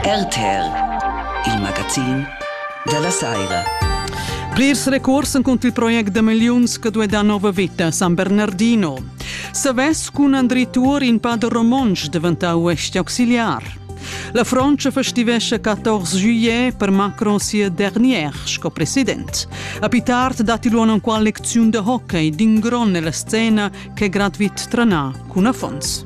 RTL, il magazin della saira. Plirs recurs cont il project de miliuns che due da nova vita San Bernardino. Savess cun Andri Tuor in pader romontsch diventau uesti auxiliar. La Fronte festivesce 14 juillet per Macron sia dernière sco president. A più tard dati luono in qual lecziun de hockey d'ingron nella scena che gradvit tranà cun affons.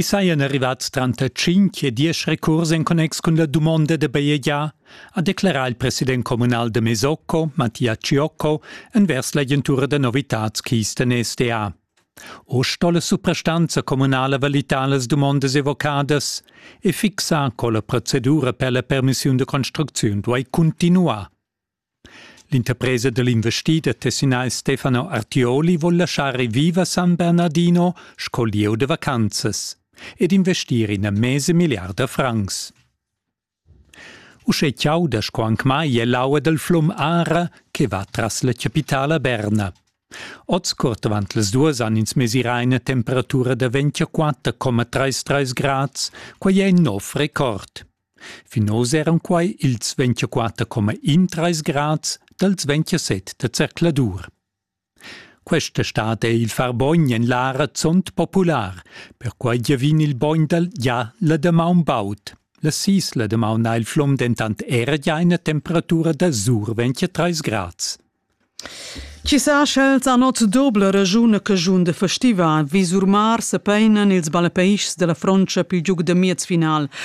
I sajan arrivats tranter tschinch e diesch recurs en connex cun la dumonda da bajegiar, ha declerà il president communal da Mesocco, Mattia Ciocco, envers l'agentura da novitads Kisten SDA. O sto la suprastanza communala valitar las dumondas evocadas e fixar co la procedura per la permissiun da construcziun duai cuntinuar. L'interpresa da l'investida tessinais Stefano Artioli vul laschar ir viva San Bernardino sco lieu da vacanzas ed investir ina mesa milliarda francs. Uschè chauda sco anc mai è l'aua dal flum Ara che va tras la chapitala Berna. Oz curt avant las duas han ins mesirà ina temperatura da 24,33 grads, quai è in nov record. Fin oz eran quai ils 24,13 grads dals 27 da zercladur. Questa stad è il far bogn en l'ara zont popular, perquai giavin il bogn dal gia la damaun baud. La sis la damaun ha il flom dentant era gia ina temperatura da sur 23 grads. Ci sa sch'els han ot dobla ragiun che giun de festiva vi sur mar se peinan ils balapeischs della frontscha più giug de miez final